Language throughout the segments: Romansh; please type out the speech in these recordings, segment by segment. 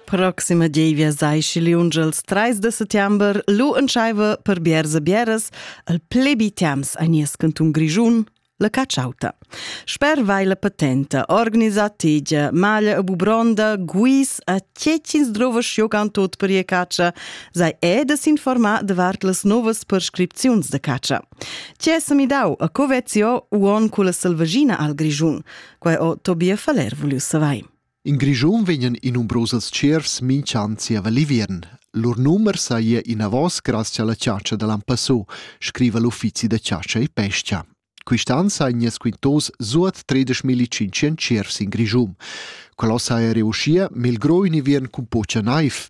Proxima gievia sai schi liunge als trais de settember lu entscheiva per bieras e bieras el plebi temps a nies cantun Grischun la cacciauta. Sper vai la patenta, organisa tegia, maglia e bubronda, guis a tschecins drovas jogan tot per ia caccia, sei è de s'informar davart las novas prescripziuns de caccia. Tge sa mi dau a Covezio uon cu la selvagina al Grischun? Quai ho Tobias Faller vuliu savair. In Grischun vegnan i numbrosos tschiervs minch'an zieva l'inviern. Lur numer saja inavos grazie alla chatscha da lampassò, scriva l'uffizi da chatscha e pescha. Quist'an saja squintos suot 13.500 tschiervs in Grischun. Quello saja reussia, melgrò in inviern cun pocha naiv,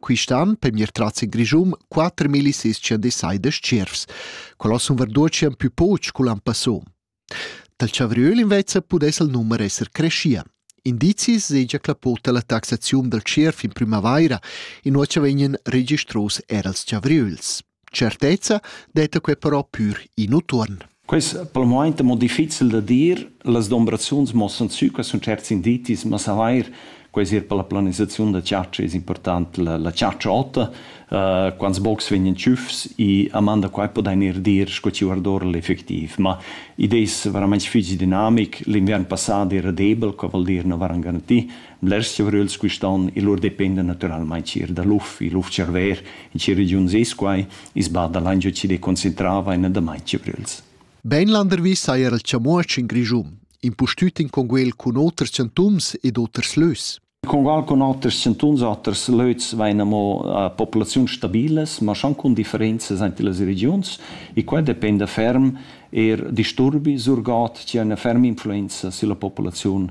Quist'an per mir tras il Grischun 4600 deciders tschiervs. Quello sun verdutschen pü poch cul an passò. Dal chavriöl invece pudess il numer esser creschia. Indizis segia clapota la taxaziun dal tschierv in primavaira, in ora vegnan registros er als chavriöls. Certezza detta quei però pür in utuon. Quei es pel momaint amo difficil da dir, las dombrazuns muossan sü qua sun tscherts indizis, ma savair quai es eir per la planisaziun da chatscha es important. La, la chatscha ota, uh, quants bocs vegnan tschüfs e a man da quai podain eir dir sco chi guardora l'effectiv. Ma id es veramaing fich dinamic. L'inviern passà era debel, co voul dir na varan garantì, Blers chiavröls quistan e lur dependan natüralmaing eir da l'uf. Il uf-tscharver in sia regiun es quai, i's bada lain giò chi'd concentrava e na damain chiavröls. Bainlandervi saja el chamuotsch in Grischun, impustüt in conguel cun oters chantuns ed oters lös. Congual cun oters chantuns, oters lös vain amo a populaziuns stabilas, ma schon cun differenzas ante las regiuns e quai dependa ferm eir disturbi, surgod chi ha üna ferma influenza sülla populaziun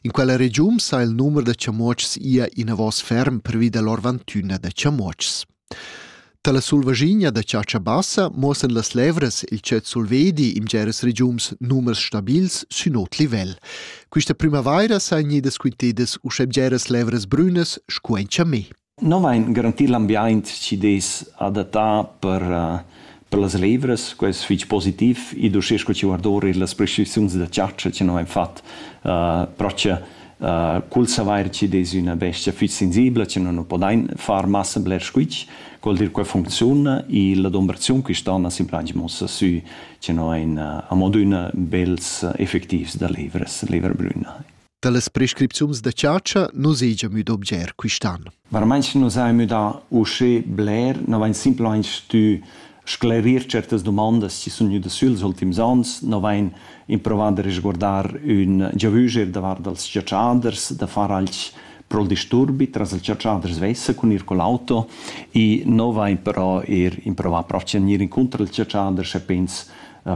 In quella regiun sa il numer da chamuotschs ia inavos ferm pervi da lor vantüna da chamuotschs. Tala sulvaschigna da chatscha bassa muossan las levras il tschet sulvedi in geras regiums numers stabils sün ot livel. Quista primavaira sain gnidas quintedas uschè geras levras brünas scu in chamé. No vain garantì l'ambiaint chi dess adattar per per las levras, quai es fich positiv. Id uschè sco chi guarda our illas prescripziuns da chatscha chi nu vain fat però cha cul savair chi dess üna bestia fich sensibla chi nu nu podain far massa bler squitsch, cuol dir qua funcziuna e l'adumbraziun quist'on as implantsch muossa sü chi no vain amo adüna bels effettivs da levras, levra brüna. Dallas prescripziuns da chatscha nus hegia müd objer quist'an. Varmaints nus hain müdà uschè bler, no vain simplamaing stü sclerir certas dumandas chi sun gnüdas süls ultims ans, no vain improvà da resguardar ün giavüscher davart dals chatschaders, da far alch pro'l disturbi tras il chatschaders svessa cun ir cul auto e no vain però eir improvà però gnir incuntro als chatschaders e pens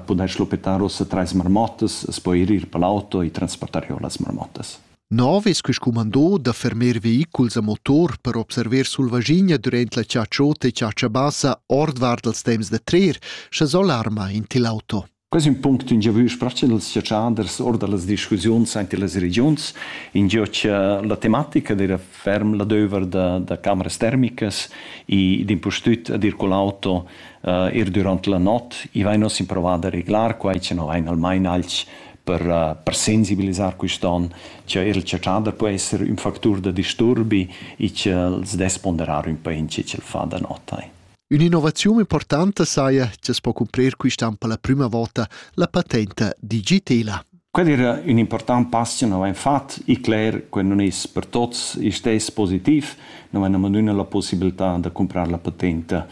pudair schluppetar ussa trais marmottas, as po ir ir per l'auto e transportar giò las marmottas. Nov es quist cumandò da fermer vehiculs a motor per observer sulvaschigna durant la chatsciota e chatscha bassa ordvart dals temps da trer, scha s'alarma in til auto. Quais ün punct ün giavü sprechen els chatschiaders or da las discussiuns aint illas regiuns, ingio cha la tematica d'eira ferm la döver da, da cameras termicas e d'impustüt ad ir cul auto Ir dürant la not, i vain uss improvo da reglar quai, cha no vain almain alch per, per sensibilisar quist on, cha eir la chatschada po esser ün factur da disturbi e ch'els dess ponderar ün pa in che ch'el fa da not ai. Ün'innovaziun importanta saja cha's po cumprir quist an per la prüma vota la patenta digitela. Quel era ün important pass cha nous hain fat. I cler che nun es per tuots il stess positiv. Nous hain amandüno la pussibiltà da cumprar la patenta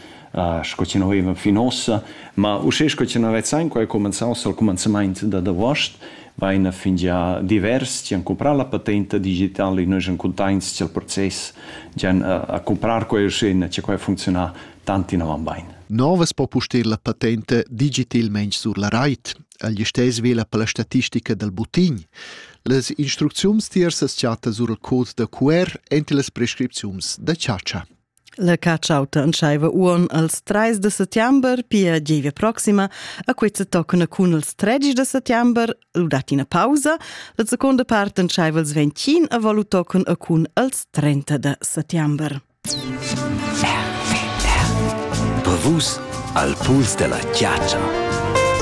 sco chi nous avevan fin uossa, ma uschè sco chi nous vezzan quai cumanzà uossa al cumanzamaint dad avuost, vaina fingià divers chi han cumprà la patenta digitala e nus ün cuntaints cha'l process gian a cumprar quai uschè cha quai ha funcziunà tant inavant bain. Novas po pustir la patenta digitilmaing sur la rait. El listess vela per la statistica dal buttign. Las instrucziuns tiers as chatta sur il code da QR enti las prescripziuns da chatscha. La catschauta entscheiva uon als 3 de settember, pia gievia proxima, a questa toccana cun els 13 de settember, lu dat ina pausa, la seconda parte entscheiva als 21 a valu toccon a cun als 30 de settember. Brevus al puls della chiaccia.